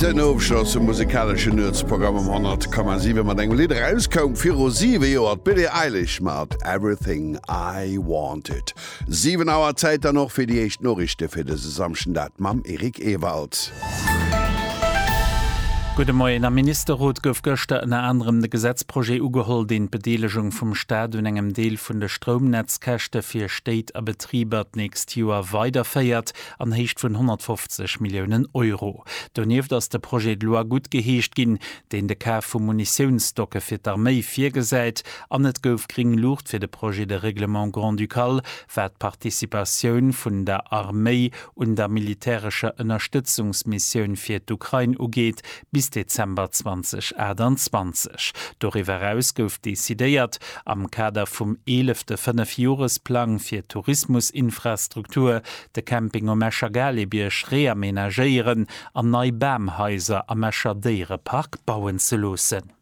Den Ofschloss vum musikaleschen Nuetsprogramm um 100,7 mat engem Lidd erauskoum viru 7 Joer, d'Billie Eilish mat Everything I Wanted. 7 Auer, Zäit dann och fir déi éischt Noriichte fir dëse Samschden, dat mam Eric Ewald. Gudde Moien. Am Ministerrot gouf gëschter ënner anerem de Gesetzprojet ugeholl, deen d'Bedeelegung vum Staat un engem Deel vun de Stroumnetzkäschte fir Stéit a Betriber d'nächst Joer weiderféiert. an Héicht vun 150 Milliounen Euro. Donieft ass de Projet de loi guttgeheescht ginn, deen de Kaf vu Munitiounsstocke fir d'Arméi virgesäit, an et gouf gring Luucht fir de Projet de règlement grand-ducal, wat d'Participatioun vun der Arméi un der militärescher Ënnerstëtzungsmissioun fir d'Ukrain ugeet, bis Dezember 2028. Doriwwer eraus gouf decidéiert, am Kader vum eelefte Fënnefjoresplang fir d'Tourismusinfrastruktur, de Camping um Escher Galebierg reamenagéieren an nei Bamhaiser am Escher Déierepark bauen ze loossen.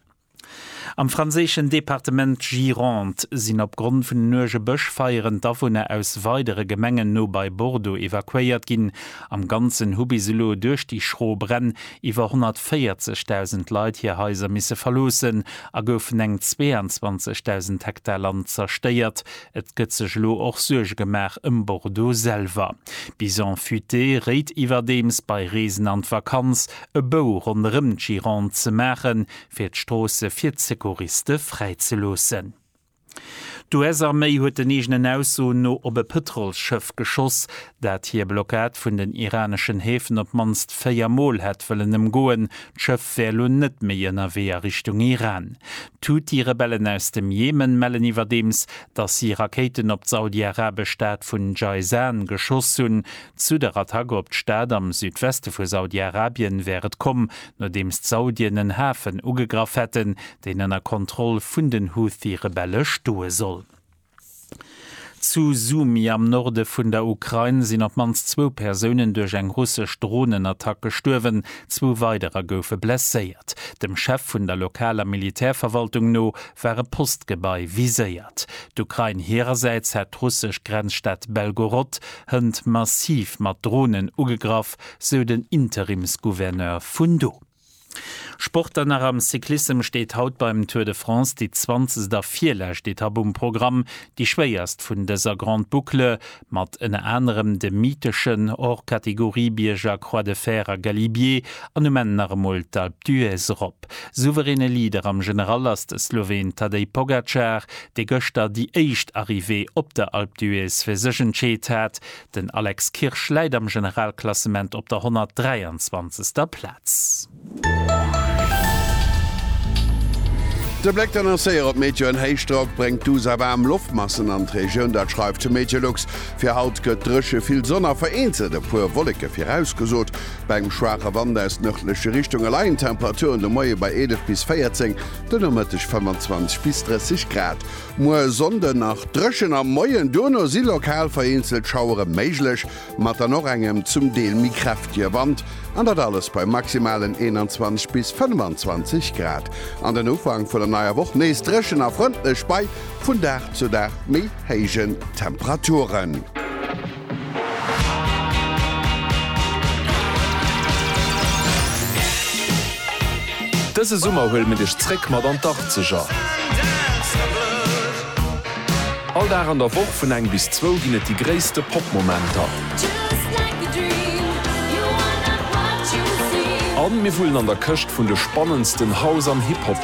Am franséischen Departement Gironde sinn opgrond vun den uerge Bëschfeieren d'Awunner aus weidere Gemengen no bei Bordeaux evakuéiert ginn. Am Ganzen hu bis elo duerch déi schro Bränn iwwer 140.000 Leit hir Haiser misse verloossen a goufen eng 22.000 Hektar Land zerstéiert. Et gëtt sech elo och Suerge gemaach ëm Bordeaux selwer. D'Bison Futé réit iwwerdeems, bei Reesen an d'Vakanz e Bou ronderëm d'Gironde ze maachen, fir d'Stroosse fir d'Secouriste fräizeloossen. D'US-Arméi huet den eegenen Aussoen no op e Pëtrolsschëff geschoss, dat hir Blockad vun den iraneschen Häfen op d'mannst véier Mol hätt wëllen ëmgoen. D'Schëff wär elo net méi ënnerwee a Richtung Iran. D'Huthi-Rebellen aus dem Jemen mellen iwwerdeems, datt si Rakéiten op d'saudi-arabesch Stad vun Jayzan geschoss hunn. Zu der Attack op d'Stad am Südweste vu Saudi-Arabien wär et komm, nodeems d'Saudien en Hafen ugegraff hätten, deen ënner Kontroll vun den Houthi-Rebelle stoe soll. Zu Sumy am Norde vun der Ukrain sinn op d'mannst zwou Persounen duerch eng russesch Dronenattack gestuerwen, zwou weiderer goufe blesséiert. Dem Chef vun der lokaler Militärverwaltung no war e Postgebai viséiert. D'Ukrain hirersäits hat d'russesch Grenzstad Belgorod Hënt massiv mat Dronen ugegraff, sou den Interimsgouverneur vun do. Sport dann nach, Am Cyclissem steet haut beim Tour de France déi zwanzegst a virlescht Etapp um Programm, déi schwéierst vun dëser Grande Boucle, mat ënner anerem de mytheschen Hors-Catégorie-Bierger Croix de Fer a Galibier an um Enn nach emol d'Alpe d'Huez erop. Souveräne Leader am General ass de Sloween Tadej Pogacar, dee gëschter déi éischt Arrivée op der Alpe d'Huez fir sech entscheet hat. Den Alex Kirsch läit am Generalklassement op der 123. Plaz. De Bléck dann ass séier op Météo an Héichdrock bréngt d'USA waarm Loftmassen an d'Regioun, dat schreift de Meteolux. Fir haut gëtt dréche, vill Sonn a vereenzelt e puer Wolleke virausgesot. Bei engem schwaache Wand aus nërdleche Richtung leien d'Temperature un de Moie bei 11 bis 14. De Nomëtteg 25 bis 30 Grad, muer e Sonnde nach dréchen am Moien, duerno si lokal vereenzelt Schauere méiglech, mat dann och engem zum Deel méi kräftege Wand, an dat alles bei maximalen 21 bis 25 Grad. An den Ufank vun der neier Woch nees dréchen a frëndlech bei vun Dag zu Dag méi héijen Temperaturen. Dëse Summer huele mir dech zréck mat an d'Arzeger. All Dag an der Woch vun eng bis zwou ginn et déi gréisste Pop-Momenter. A mir wullen an der Këscht vun de spannendsten House an Hip-Hop.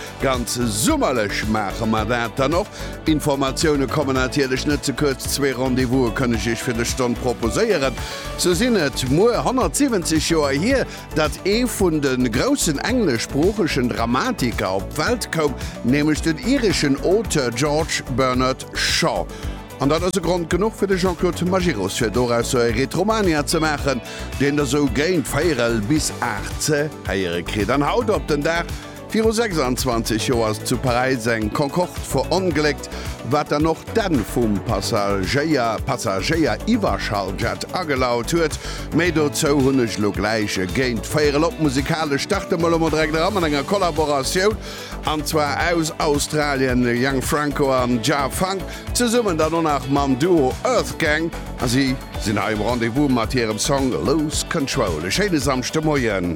Ganz summerlech maache mer dat dann och. Informatioune kommen natierlech net ze kuerz. Zwee Rendez-vouse kënneg ech fir dës Stonn proposéieren. Sou sinn et muer 170 Joer hier, datt ee vun de groussen engleschsproochegen Dramatiker op d'Welt koum, nämlech den ireschen Auteur George Bernard Shaw. An dat ass e Grond genuch fir de Jean-Claude Majerus, fir dorausser e Retromania ze maachen, deen Der sou géint véierel bis aacht ze héiere kritt. An haut op den Dag Viru 26 Joer ass zu Paräis eng Concorde verongléckt, wat dann och d'Enn vum Passagéier Passagéier Iwwerschalljet agelaut huet. Méi dozou hunn ech elo gläich e géint 4 el op. Musikalesch starte mer elo mol direkt era mat enger Kollaboratioun, an zwar aus Australien de Young Franco an Jah Funk, zesummen dann och nach mam Duo Earthgang, a si sinn hei um Rendez-vous mat hirem Song Lose Control. E schéine Samschdemoien.